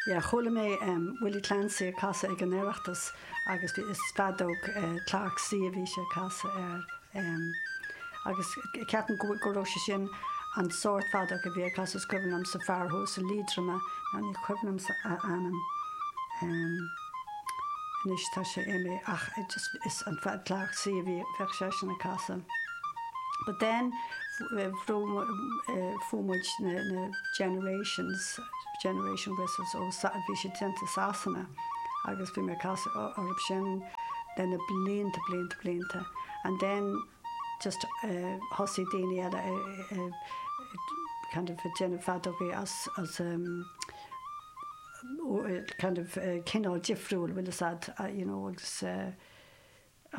Yeah chuala mé em Willie Clancy ag casadh ag an Oireachtas agus bhí is feadóg eh Clarke C a bhí sé ag casadh air em agus ceapaim go go raibh sé sin an sórt feadóg a bhí ag casadh is cuimhin liomsa fear thuas i Liatroma ná ní cuimhin liomsa a ainm em anois tá sé imithe ach just is an fead Clarke C a bhí bheadh seisean ag casadh but then bhrú eh fuair muid na na generations Generation Whistles ó Sa-, bhí siad déanta i Sasana agus bhí mé ag casadh orthu sin le na blianta blianta blianta and then just thosaigh daoine eile kind of ag déanamh feadógaí as kind of cineál difriúil an bhfuil a fhios agat you know agus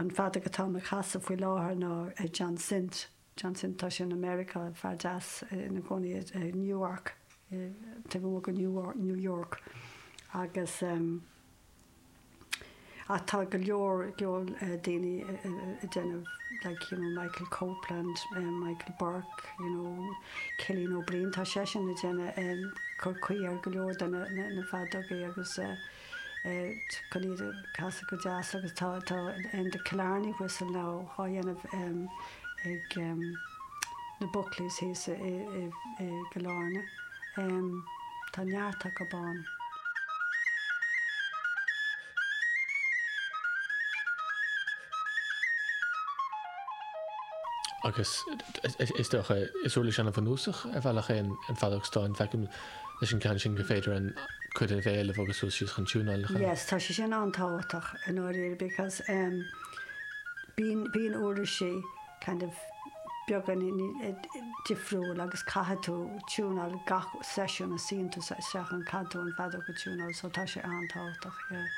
an feadóg atá mé ag casadh faoi láthair ná John Sindt. John Sindt, tá sé in America, fear deas ina chónaí i Nyack, taobh amuigh de New York, agus ach tá go leor daoine ag déanamh like you know Michael Copeland, Michael Burke, you know Cillian Ó Briain, tá seisean ag déanamh cur caoi ar go leor de na feadógaí agus eh. chun iad a chasadh go deas agus tá tá em the Killarney whistle now dhá dhéanamh em ag em na Buckleys thíos i i i i gCill Airne. Em tá neart acub ann. Agus is is dócha, is uirlis an-bhunúsach ar bhealach é an an feadóg stáin. Feicim leis an gceann sin gur féidir an cuid an bhéil a bhogadh suas síos chun tiúnála. Yes, tá sé sin an-tábhachtach i ndáiríre because um, bíonn bíonn uirlisí kind of beagán difriúil agus caithfidh tú tiúnáil gach seisiún a suíonn tú isteach ann caithfidh tú an feadóg a tiúnáil, so tá sé an-tábhachtach. Yeah.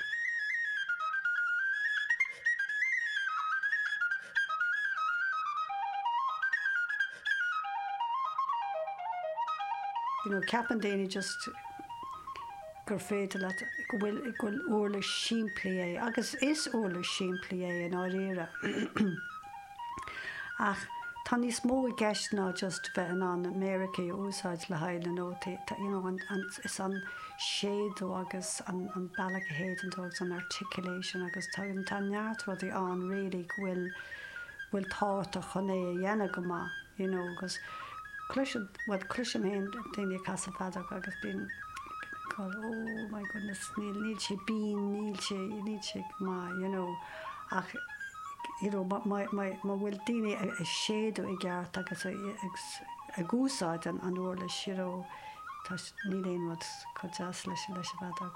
You know, ceapann daoine just gur féidir leat, go bhfuil, go bhfuil uirlis simplí é, agus is uirlis simplí é i ndáiríre, ach tá níos mó i gceist ná just bheith in ann méarachaí a úsáid le haghaidh na nótaí. Tá, you know, an, an, is an séideadh agus an, an bealach a shéideann tú agus an articulation agus tá, tá neart rudaí ann really go bhfuil. bhfuil tábhachtach chun é a dhéanamh go maith you know agus cloiseann bhuel cloisim féin daoine ag casadh feadóg agus bíonn oh my goodness níl níl sé bean níl sé níl sé maith you know ach you know má má má má bhfuil daoine ag ag séideadh i gceart agus ag ag ag úsáid an an uirlis you know tá níl aon rud chomh deas leis leis an bhfeadóg.